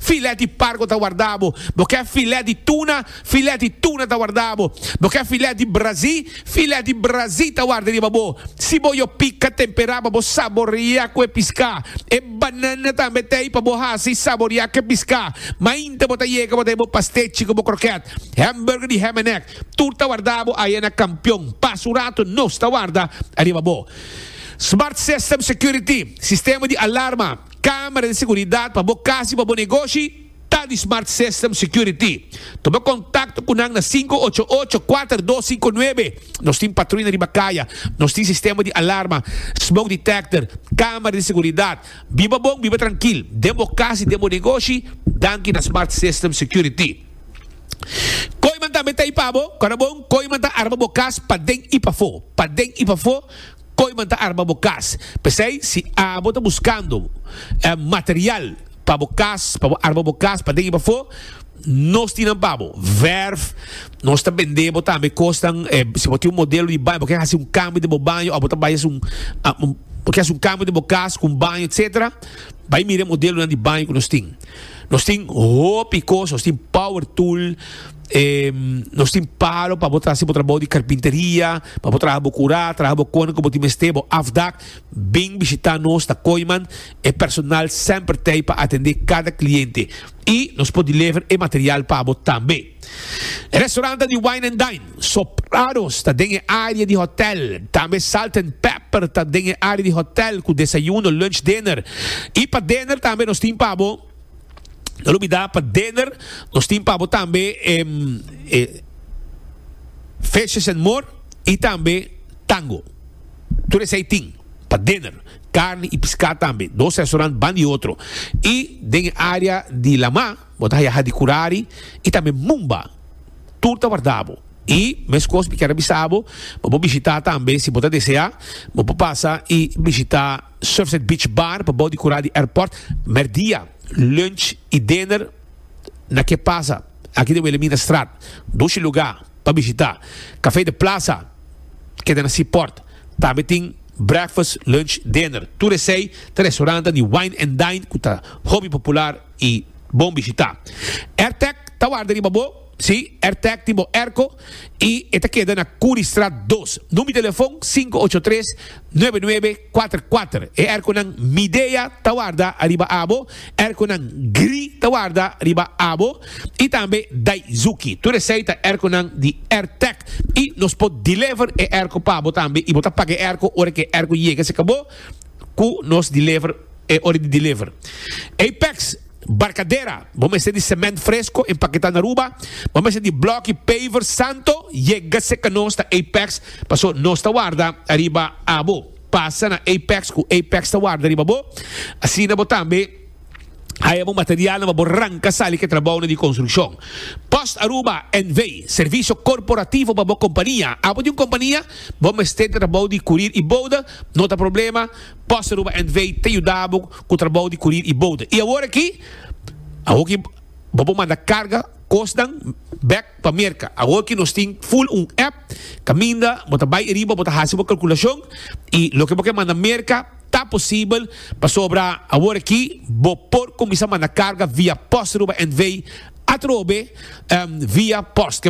Filèt di pargo ta wardá bo. Bo kè filèt di tuna, filèt di tuna ta wardá bo. Bo kè filèt di brazí, filèt di brazí ta warda riba bo. Si bo yo pika, temperá pa bo saboreá ku e piská. E banana tambe ta ei pa bo hasi saboreá ku e piská. Mainta bo ta yega bo ta ei bo pastechi ku bo krokèt. Hèmburger di hèm en nèk tur ta wardá bo aye na Kampion. Pas un ratu nos ta warda ariba bo. Smart System Security, sistema di alarma, Camera di seguridad pa bo casi pa bo negoshi ta di Smart System Security. Tuma contacto cu nan na cinco ocho ocho, cuater dos cinco nuebe. Nos tin patruya na riba caya. Nos tin sistema di alarma, smoke detector, camera di seguridad. Biba bon, biba trankil, den bo cas y den bo negoshi, danki na Smart System Security. Koiman tambe ta ahi pa bo. Kora bon, Koiman ta arma bo cas pa den y pafo. Pa den y pafo, Koiman ta arma bo kas. P'esei si abo ta buskando material pa bo kas, pa bo arma bo kas paden i pafó, nos tin nan pa bo. Verf, nos ta bend'é bo tambe kosnan, si bo tin un modelo di baño bo ke hasi un kambio den bo baño òf bo ta bai hasi un bo ke hasi un kambio den bo kas ku un baño etsetera, bai mira e modelonan di baño ku nos tin. Nos tin hopi kos, nos tin power tool. nos tin palo pa bo ta haci bo trabou di carpinteria, pa bo traha bo cura, traha bo con cu bo tin mester, bo afdak, bin bishita nos na Kooiman, e personal semper t'ey pa atende cada cliente y nos por deliver e material pa bo tambe. E restauranta di Wine and Dine, Sopranos, ta den e area di hotel, tambe Salt and Pepper ta den e area di hotel cu desayuno, lunch, dinner y pa dinner tambe nos tin pa bo. No lo bida pa dinner nos tin pabo tambe e fishes and more y tambe tango. Tur esey tin pa dinner. Carne y piscad tambe. Dos restaurant ban di otro. Y den e area di Lamá bo ta haya Hadi Curari y tambe Mumba. Tur ta wardabo. Y mescos mi kier a bisabo pa bo bishita tambe si bo ta desea bo por pasa y bishita. Surfside Beach Bar pabou di Kura di Airport, merdia, lunch y dinner na ke pasa aki den Wilhelminastraat, dushi luga pa bishita, Café de Plaza keda na Seaport, tambe tin breakfast, lunch, dinner, tur esey ta restorantan di wine and dine ku ta hopi popular y bon bishita. Airtech ta warda riba bo. Si, er tag tin bo erko y e ta keda na Curriestraat dos. Number telefon sinku ocho tres nuebe nuebe kuater kuater. E erkonan Midea ta warda riba abo, erkonan Gri ta warda riba abo y tambe Daizuki. Tur esey ta erkonan di er tag y nos por deliver e erko pa bo tambe y bo ta paga e erko ora cu e erko yega cerca bo cu nos deliver e ora di deliver. Apex. Barkadera, bo mester di semènt fresko empaketá na Aruba, bo mester di blòki paver santo, yega seka nos na Apex paso nos ta warda ariba abo. Pasa na Apex ku Apex ta warda riba bo, asina bo tambe haya bo materialnan pa bo ranka sali ku e trabounan di konstrukshon. Post Aruba NV. Servisio korporativo pa bo kompania. Abo di un kompania? Bo mester di trabou di kurir i bouda? No ta problema, Costa Ruba NV. ta yuda bo cu trabou di curir y bouda. Y awor aki, a hopi bo por manda carga cosnan bek pa Merca. Awor aki nos tin full un app caminda bo ta bay ariba bo ta haci bo calculacion y loke bo kier manda Merca ta posibel pasobra awor aki bo por cuminsa manda carga via Costa Ruba NV atrobe via post.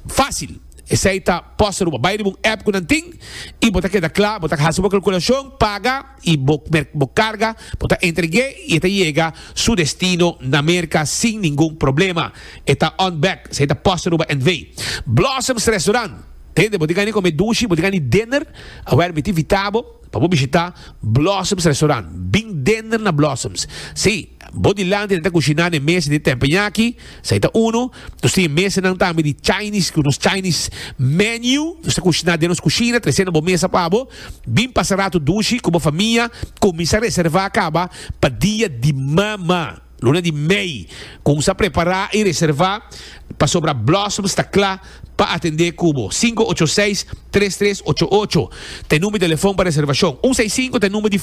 Fácil, esei ta Posta Aruba. Bai riba un app ku nan tin i bo ta keda kla, bo ta hasi bo kalkulashon, paga i bo merk bo karga, bo ta entreg'é i e ta yega su destino na Merka sin ningun problema. E ta on bek, esei ta Posta Aruba NV. Blossoms Restaurant, hende bo di gani kome dushi, bo di gani dinner, a wer mi ta invitá bo pa bo bishitá Blossoms Restaurant. Bin dinner na Blossoms. Sí. Bo dilanti nan ta kushiná n'e mesa di tempenyaki, sa e ta unu. Nos tin e mesanan tambe di Chinese ku nos Chinese menu. Nos ta kushiná den nos kushina, tresé na bo mesa pa bo. Bin pasa ratu dushi ku bo famia. Kuminsá reservá kaba pa dia di mama, luna di mei. Kuminsá prepará i reservá pasobra Blossoms ta kla pa atendé ku bo. Sinku ocho seis, tres tres ocho ocho ta e number di telefòn pa reservashon. Un seis sinku ta e number di.